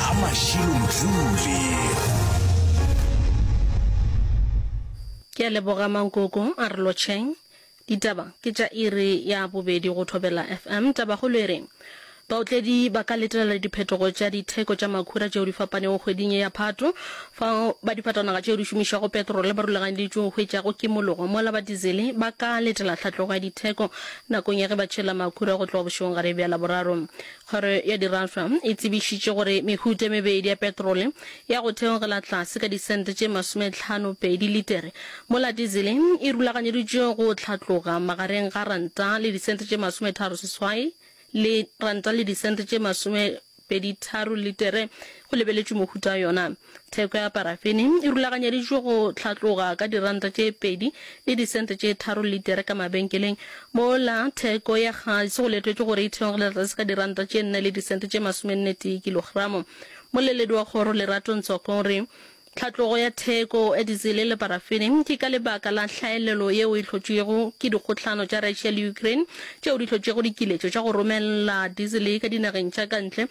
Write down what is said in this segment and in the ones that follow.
a mašilo motuli ke a leboga mankoko a re lotšheng ditaba ke tša iri ya bobedi go thobela fm tabagolo e re baotledi ba ka letelela diphetogo tša ditheko tša makhura tšeo di fapanego kgweding ye ya phato fa ba difatanaga tšeo di šomišago petrole ba rulaganyeditšwe go hwetšago kimologo mola ba dizele ba ka letela tlhatlogo ya ditheko nakong ya ge ba tšhela makhura go tloga bošegong gare bja laboraro Kgoro ya Diraswa e tsebišitše gore mehuta e mebedi ya petrole ya go theogela tlase ka disente tše masometlhano pedi litere, mola dizele e rulaganyeditšwe go hlatloga magareng ga ranta le disente tše masometharo seswai le ranta le disente tše masomepeditharo litere, go lebeletšwe mohuta yona. Theko ya parafene e rulaganyeditšwe go hlatloga ka diranta tše pedi le disente tše tharo litere ka mabenkeleng, mola theko ya gase go letetšwe gore e theogele tlase ka diranta tše nne le disente tše masomennetee kilogramo. Mmoleledi wa kgoro Lerato Ntsoko o re hlatlogo ya theko ya dizele le parafene ke ka lebaka la hlaelelo yeo e hlotšwego ke dikgohlano tša Russia le Ukraine tšeo di hlotšego dikiletšo tša go romella dizele ka dinageng tša ka ntle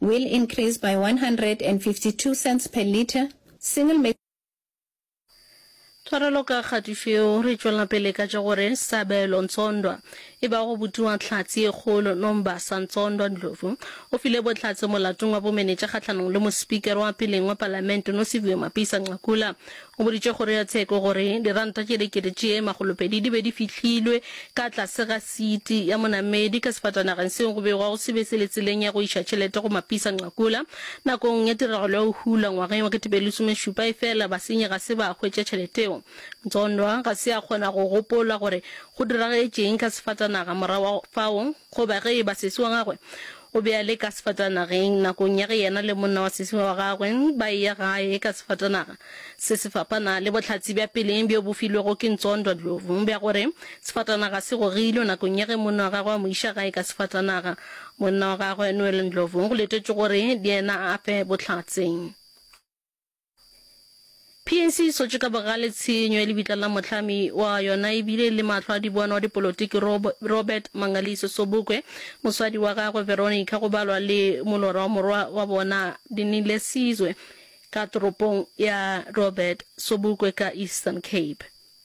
will increase by 152 cents per litre, single maize. Tshwarelo ka kgatišo yeo, re tšwela pele ka tša gore Sabelo Ntsondwa, e ba go butiwa Tlhatsi e Kgolo, Nombasa Ntsondwa Ndlovu, o file bohlatse molatong wa bomenetša kgahlanong le mospikere wa peleng wa palamente Nosiviwe Mapisa-Nqakula O boditše kgoro ya tsheko gore diranta tše dikete tše makgolopedi di be di fihlilwe ka tlase ga siti ya monamedi ka sefatanageng seo go begwago se be se le tseleng ya go iša tšhelete go Mapisa Nqakula nakong ya tiragalo ya go hula ngwageng wa ketepelesomešupa efela basenyi ga se ba hwetša tšheleteo. Mtsondwa ga se a kgona go gopola gore go diragetše'ng ka sefatanaga morago ga fao goba ge e ba sesi wa gagwe O be a le ka sefatanageng nakong ya ge yena le monna wa seswi wa gagwe ba eya gae ka sefatanaga se se fapana le bohlatse bja peleng bjo bo filwego ke Ntsondwa Ndlovu bja gore sefatanaga se gogilwe nakong ya ge monna wa gagwe a mo iša gae ka sefatanaga. Monna wa gagwe, Noel Ndlovu, go letetšwe gore le yena a ape bohlatse. PAC e sotše ka bogale tshenyo ya lebitla la mohlami wa yona e bile le mahlo a dibona wa dipolotiki Robert Mangaliso Sobukwe, moswadi wa gagwe Veronica go balwa le molora wa morwa wa bona Dinile Sizwe ka toropong ya Robert Sobukwe ka Eastern Cape.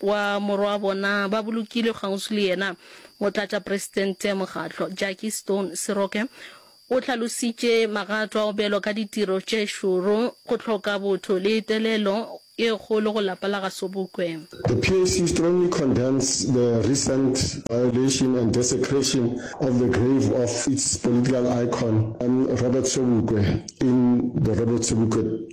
wa morwabona ba bolokilwe kgauswi le yena. Motlatšapresidente Mokgatlo Jackie Stone Seroke o hlalositše magato a go belwa ka ditiro tše šoro, go hloka botho le telelo e kgolo go lapa la ga Sobukwe. The PAC strongly condemns the recent violation and desecration of the grave of its political icon, Robert Sobukwe in the Robert Sobukwe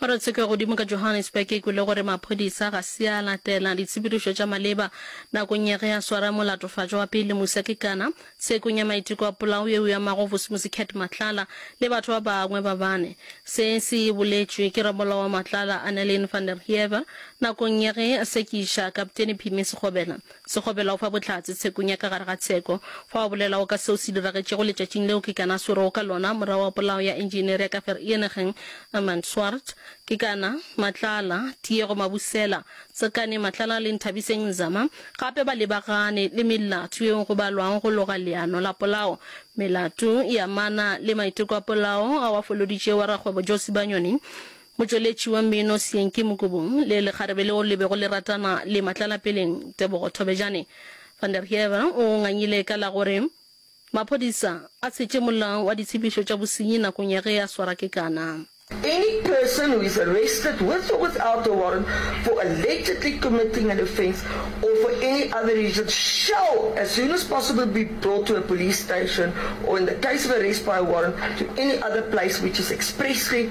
Kgorotsheko ya godimo ka Johannesburg e kwele gore maphodisa ga se a latela ditshepedišo tša maleba nakong ya ge a swara molatofatšwa wa pele Musa Kekana tshekong ya maiteko a polao yeo e amago Vusimusi Cat Matlala le batho ba bangwe ba bane. Se se boletšwe ke ramolao wa Matlala, Annelien van der Heever, nakong ya ge a sekiša Kapteni Phimi Sekgobela. Sekgobela o fa Bohlatse tshekong ya ka gare ga tsheko. Fa o bolelago ka seo se diragetšego letšatšing leo ke kana a swerego ka lona morago ga polao ya Engineer ya ka Vereeniging, Armand Swart, ke kana, Matlala, Tiego Mabusela, Tsakane Matlala le Nthabiseng Nzama gape ba lebagane le melato yeo go balwago go loga leano la polao, melato e amana le maiteko a polao ao a foloditšego wa rakgwebo Joe Sibanyoni. Motšweletši wa mmino Syenky Mukubung le lekgarebe leo le bego le ratana le Matlalapeleng Tebogo Thobejane, Van der Heever o ngangile ka la gore maphodisa a tshetše mola wa ditshephišo tša bosenyi nakong ya ge a swara kekana. Any person who is arrested with or without a warrant for allegedly committing an offence or for any other reason shall as soon as possible be brought to a police station or in the case of arrest by a warrant to any other place which is expressly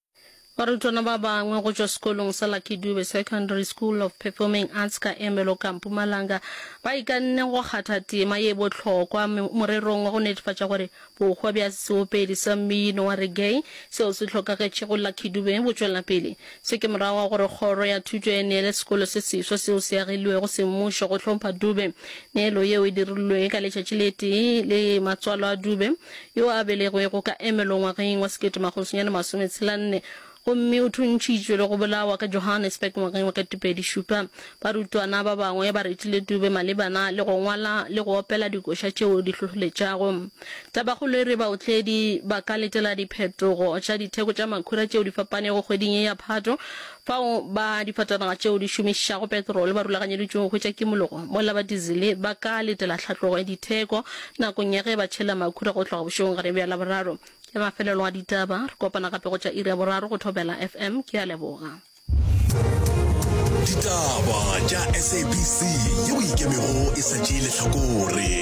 Barutwana ba bangwe go tšwa sekolong sa Lucky Dube Secondary School of Performing Arts ka Ermelo ka Mpumalanga ba ikanne go kgatha tema ye bohlokwa morerong wa go netefatša gore bohwa bja seopedi sa mmino wa reggae seo se hlokagetšego Lucky Dube bo tšwela pele. Se ke morago ga gore kgoro ya thuto e neele sekolo se seswa seo se agilwego semmušo go hlompha Dube. Neelo yeo e dirilwe ka letšatši le tee le matswalo a Dube yo a belegwego ka Ermelo ngwageng wa sekete makgolo senyane masome tshela nne, gomme o thuntšhitšwe le go bolawa ka Johannesburg ngwageng wa ketepedi šupa. Barutwana ba bangwe ba retile Dube malebana le go ngwala le go opela dikoša tšeo di hlohleletšago. Tabakgolo e re baotledi ba ka letela diphetogo tša ditheko tša makhura tšeo di fapanego kgweding ye ya Phato, Fao ba difatanaga tšeo di šomišago petrole ba rulaganyeditšwego go hwetša kimologo mola ba dizele ba ka letela tlhatlogo ya ditheko nakong ya ge ba tšhela makhura go tloga bošegong gare bja Laboraro. Ke mafelelo a ditaba. Re kopana gape go tša iri ya boraro go Thobela FM. Ke a leboga. Ditaba tša SABC yeo e ikemego e sa tšee lehlakore.